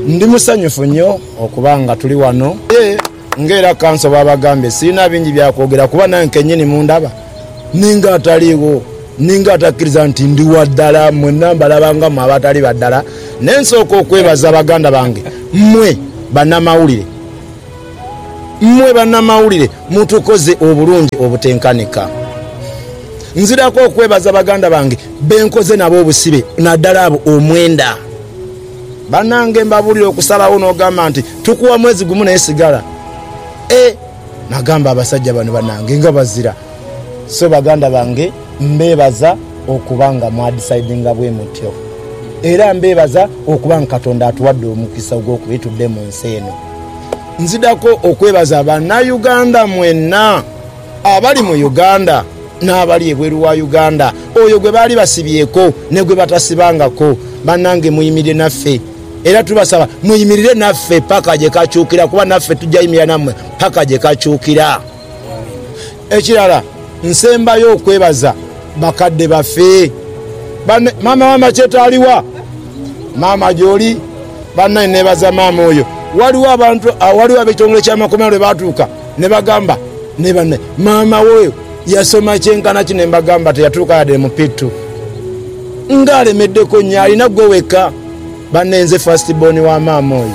Ndi musanyufu inho okuba nga tuli wano aye nga era kanso bw'abagambye sirina bingi bya kwogera kuba nange kennyini mundaba ninga ataliigho, ninga atakkiriza nti ndi wa ddala. Mmwenna mbalaba nga mmwe abatali ba ddala naye nsooka okwebaza baganda bange mmwe bannamawulire. Mmwe bannamawulire mutukoze obulungi obutenkanika. Nziraku okwebaza baganda bange be nkoze nabo obusibe naddala abo omwenda. Bannange mbabuulire okusalawo n'ogamba nti tukuwa mwezi gumu naye sigala e Nagamba abasajja bano bannange nga bazira so baganda bange mbeebaza okuba nga mwadisaidinga bwe mutyo era mbeebaza okuba nga Katonda atuwadde omukisa ogw'okuba tudde mu nsi eno. Nzidako okwebaza bana Uganda mwena abali mu Uganda n'abali ebweru wa Uganda, oyo gwe baali basibyeeko ne gwe batasibangako. Banange muyimire naffe era tubasaba muyimirire naffe paka gye kakyukira kuba naffe tujja yimirira nammwe paka gye kakyukira. Ekirala nsembayo okwebaza bakadde baffe. Bann. Maama wa Macheto aliwa? Maama gyoli? Banae nebaza maama oyo. Waliwo abantu, waliwo ab'ekitongole ky'amakomera lwe baatuuka ne bagamba ni banae, Maama wo yasoma kyenkana ki? Ne mbagamba, Teyatuuka yade mu P2. Nga alemeddeko nnyo! Alina gwe wekka. Banae nze first born wa maama oyo.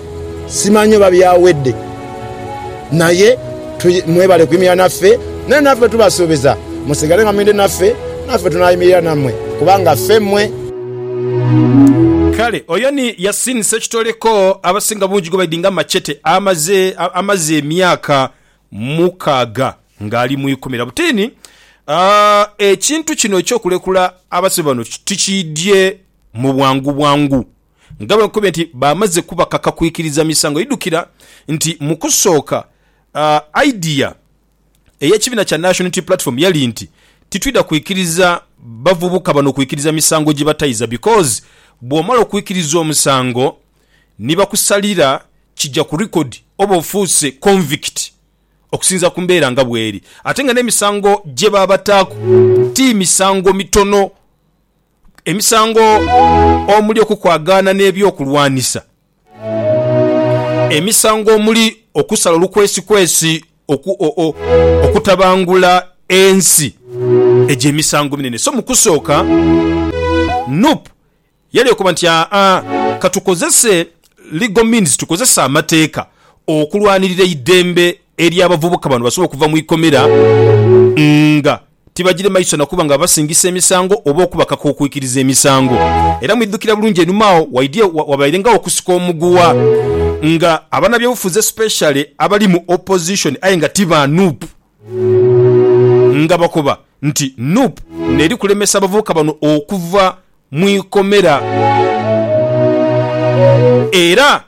Simanyi oba byawedde, naye mwebale kuyimirira naffe, naye naffe tubasuubiza musigale nga mwidhi naffe, naffe tunaayimirira nammwe, kubanga ffe mmwe. Kale oyo ni Yasin Ssekitoleko abasinga bungi gwe baidinga Machete amaze amaze emyaka mukaaga ng'ali mu ikumira. Butiini ekintu kino eky'okulekula abasibe bano tikiidye mu bwangu bwangu. nga bwe nkube nti baamaze kubakaka kwikiriza misango. Idhukira nti mu kusooka idea ey'ekibiina kya National Unity Platform yali nti titwidha kwikiriza bavubuka bano kwikiriza misango gye bataiza because bw'omala okwikiriza omusango ni bakusalira kija ku record oba ofuuse convict okusinziira ku mbeera nga bweri ate nga n'emisango gye baabataaku ti misango mitono. Emisango omuli okukwagaana n'eby'okulwanisa, emisango omuli okusala olukwesikwesi, okutabangula ensi, egyo emisango minene. So mu kusooka nup yali ekoba nti aa ka tukozese legal means, tukozese amateeka okulwanirira eidembe ery'abavubuka bano basobole okuva mu ikomera nga Tibagirema iso na kuba nga babasingisa emisango oba okubakaka okwikiriza emisango. Era mwidhukira bulungi enhuma agho waidhie wabairengawo okusika omuguwa nga abanabyobufuzi especially abali mu opposition aye nga ti ba nup nga bakoba nti nup neri kulemesa abavubuka bano okuva mu ikomera era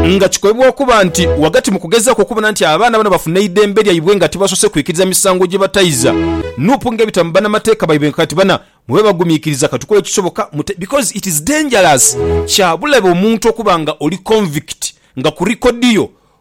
Nga kikolebwa okuba nti ghagati mu kugezaaku okubona nti abaana bano bafuna eidembe lyaibwe nga tibasoose kwikiriza misango gye bataiza, nup ng'ebita mu banamateeka baibwe nga kati bana mwe babagumiikiriza ka tukole ekisoboka mute because it is dangerous, kya bulabe omuntu okuba nga oli convict nga ku record yo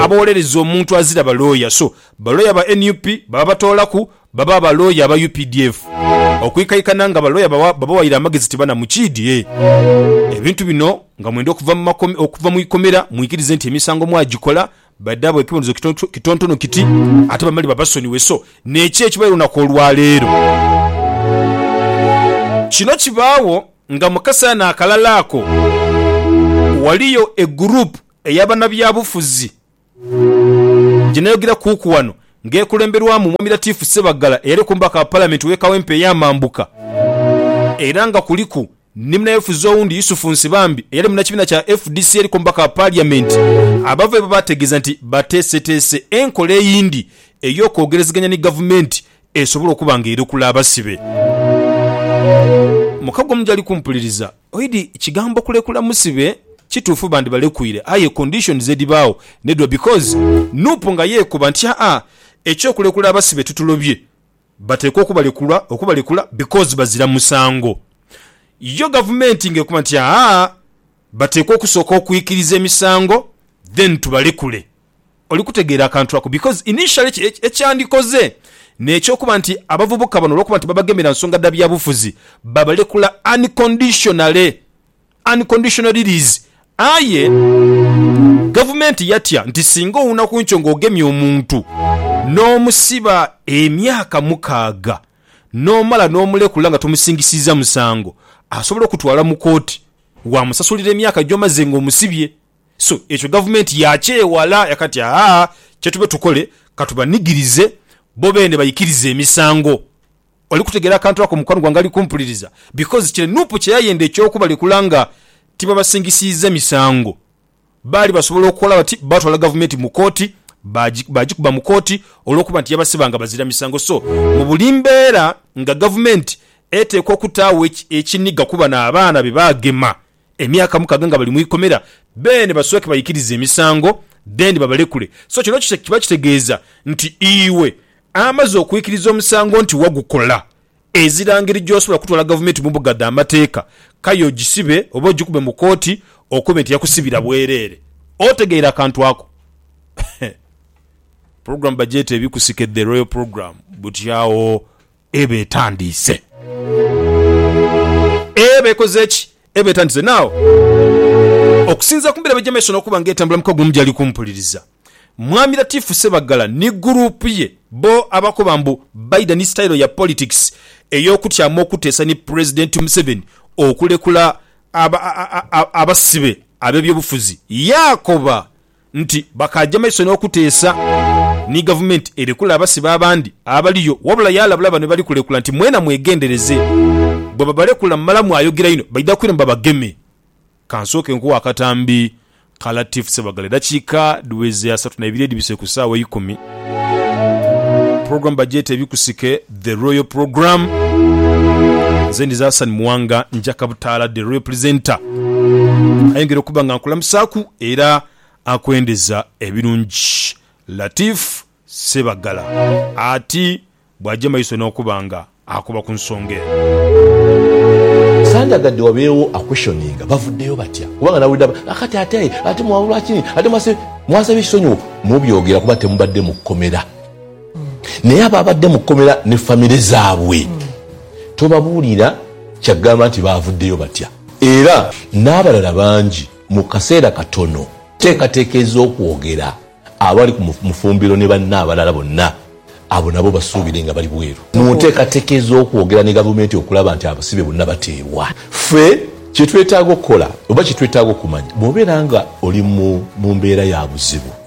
aboolereza omuntu azira balooya so balooya ba nup baba batoolaku baba balooya aba updf okwikaikana nga balooya babawaire amagezi ti bana Mukiidi e ebintu bino nga mwenda okuva mu ikomera mwikirize nti emisango mwagikola badhaabwe ekibonerezo kitontono kiti ate bamale babasonyiwe so nekyo ekibaire olunaku olwaleero Kino kibaawo nga mu kaseera naakalala ako waliyo e group Eya banabyabufuzi gyenayogira kuuku wano nga ekulemberwamu Mwami Latif Ssebaggala eyali Omubaka wa Palamenti w'e Kawempe ey'amambuka era nga kuliku ni munayofuzi owundi Yusuf Nsibambi eyali munakibiina kya fdc eriku Omubaka wa Paliyamenti abava eba baategeeza nti bateeseteese enkola eyindi ey'okwogerezeganya ni Gavumenti esobole okuba nga erokula abasibe. Mukago mugyali kumpuliriza. Oidi kigambo kulekula musibe kituufu bandibalekuire aye conditions edibaawo nedwa because Nup nga yeekuba nti haa ekyokulekula abasibe tutulobye bateekwa okubalekulwa okubalekula because bazira musango yo gavumenti nga ekuba nti haa bateekwa okusooka okwikiriza emisango then tubalekule. Oli kutegeera akantu ako? Because initially ekyandikoze n'ekyokuba nti abavubuka bano olwokuba nti babagemera nsonga dha byabufuzi babalekula unconditionally, unconditional release, aye gavumenti yatya nti singa owuna ku nkyo ng'ogemye omuntu n'omusiba emyaka mukaaga n'omala n'omulekula nga tomusingisiizza musango, asobola okutwala mu kooti waamusasulira emyaka gy'omaze ng'omusibye. So ekyo gavumenti yaakyewala yakati, Aa, kye tube tukole, ka tubanigirize bo beene baikirize emisango. Oli kutegeera akantu ako, mukwano gwange ali kumpuliriza? Because kire nup kye yayenda eky'okubalekula nga tibabasingisiizza misango, baali basobola okukola bati, baatwala gavumenti mu kooti, baagi, baagikuba mu kooti, olw'okuba nti yabasiba nga bazira misango. So, mu buli mbeera nga gavumenti eteekwa okutaagho ekiniga ku bano abaana be baagema. Emyaka mukaga nga bali mu ikomera, beene basooke baikirize emisango, then babalekule. So kino kiba kitegeeza nti iwe amaze okwikiriza omusango nti wagukola, ezira ngeri gy'osobola kutwala gavumenti mu mbuga dha mateeka, kaya ogisibe oba ogikube mu kooti okobe nti yakusibira bwereere. Otegeera akantu ako? Program bagyeta ebikusike, The Royal Program. Buti agho eba etandiise. Eba ekoze ki? Eba etandiise. Now, okusinzira ku mbeera by'eja maiso n'okuba nga etambula mu kagumu gy'ali kumpuliriza, Mwami Latifu Sebaggala ni guruupu ye bo abakoba mbu baidha ni sitayiro ya politics ey'okutyamu okuteesa ni Pulezidenti Museveni okulekula abasibe ab'ebyobufuzi. Yaakoba nti bakaaja maiso n'okuteesa ni gavumenti erekule abasibe abandi abaliyo wabula yaalabula bano bali kulekula nti mwena mwegendereze bwe babalekula mumala mwayogera inho baidha kwiramu babageme. Ka nsooke nkuwe akatambi ka Latif Ssebaggala eddakiika dhiweze asatu na ibiri edhibise ku ssaawa eikumi. Pulogulaamu bagyeta Ebikusike. The Royal Programme. Nze ndi Zasan Muwanga Njaka Butaala The Royal Presenter. Ayongera okuba nga nkulamusaaku era akwendeza ebirungi Latif Ssebagala ati bw'aja maiso n'okuba nga akoba ku nsonga eno. Sandyagadde wabeewo aquestioninga bavuddeyo batya kubanga nawulidde aba nakati ate ate mwawulwaki ate mwase mwasaba ekisonyiwo mubyogera kuba temubadde mu kkomera. Naye abaabadde mu kkomera ne famire zaabwe tobabuulira kya kugamba nti baavuddeyo batya era n'abalala bangi mu kaseera katono. Enteekateeka ez'okwogera abali ku Mufumbiro ne banne abalala bonna abo nabo basuubire nga bali bweru mu nteekateeka ez'okwogera ne Gavumenti okulaba nti abasibe bonna bateebwa. Ffe kye twetaaga okukola oba kye twetaaga okumanya bw'obeera nga oli mu mbeera ya buzibu.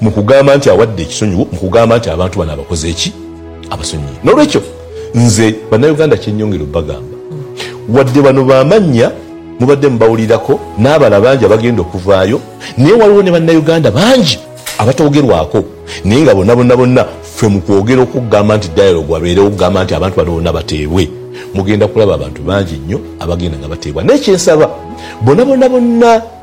Mu kugamba nti awadde ekisonyiwo, mu kugamba nti abantu bano abakoze ki? Abasonyiye. N'olwekyo nze Bannayuganda kye nnyongera obagamba, wadde bano ba mannya mubadde mubawulirako n'abalala bangi abagenda okuvaayo, naye waliwo ne Bannayuganda bangi abatoogerwako naye nga bonabona bona ffe mu kwogera okugamba nti dialogue abeerewo okugamba nti abantu bano bona bateebwe, mugenda kulaba abantu bangi nnyo abagenda nga bateebwa. Naye kye nsaba bonabona bona.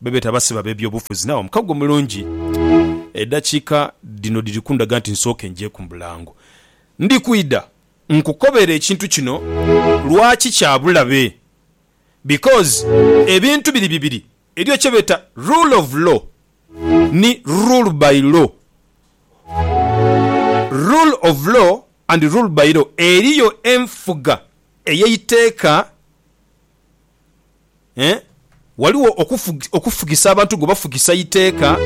Bebeeta abasibe ab'ebyobufuzi naawe omukago mulungi. Edhakiika dhino dhiri kundaga nti nsooke njeeku mu bulango. Ndi kwidha nkukobere ekintu kino lwaki kya bulabe. Because ebintu biri bibiri, eriyo kye beeta rule of law ni rule by law. Rule of law and rule by law, eriyo enfuga ey'eiteeka. Eeh Ghaligho okufugisa abantu gwe bafugisa iteeka,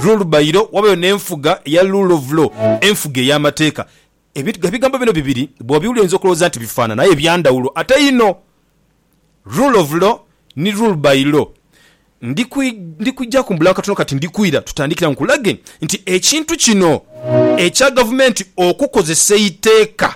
rule by law, ghabayo n'enfuga eya rule of law, enfuga ey'amateeka. Ebigambo bino bibiri bw'obiwulira oyinza okulowooza nti bifaanana aye bya ndhawulo ate inho. Rule of law ni rule by law. Ndi kwijaku mbula katono kati ndi kwira tutandikira nkulage nti ekintu kino ekya gavumenti okukozesa eiteeka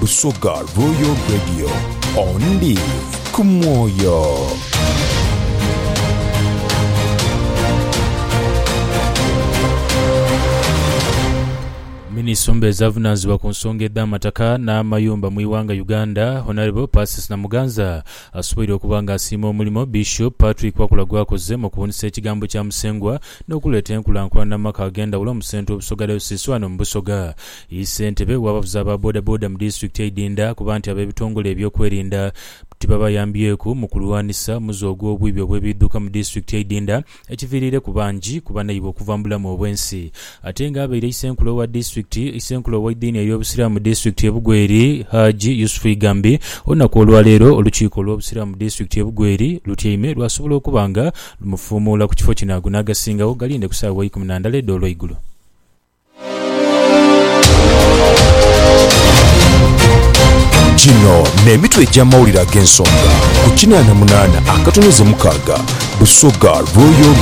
Busoga Royal Radio, ondi ku mwoyo. Minisumba ezavunanzibwa ku nsonga edh'amataka n'amayumba mu ighanga Uganda Honourable Persis Namuganza asoboire okuba nga asiima omulimo Bishop Patrick Wakula gwakoze mu kubuunisa ekigambo kya Musengwa n'okuleeta enkulankulana mu maka ag'endhawulo mu Central Busoga Diocese ghano mu Busoga. Ye ssentebe w'abavuzi aba bodaboda mu disitulikiti eidinda kuba nti ab'ebitongole eby'okwerinda tibabayambyeku mu kulwanisa muze ogw'obwibi obw'ebiidhuka mu disitulikiti eidinda ekiviriireku bangi ku banaibwe okuva mu bulamu obw'ensi ate nga abaire isenkulu owa disitulikiti isenkulu ow'eidini ey'obusiraamu mu disitulikiti ye Bugweri Haji Yusufu Igambi olunaku olwaleero olukiiko olw'obusiraamu mu disitulikiti ye Bugweri lutyaime lwasobola okuba nga lumufuumuula ku kifo kino ago n'agasingawo galinde ku saawa eikumi na ndala edh'olweigulo. Gino n'emitwe egy'amawulire ag'ensonga ku kinaana munaana akatonyaze mukaaga, Busoga Royal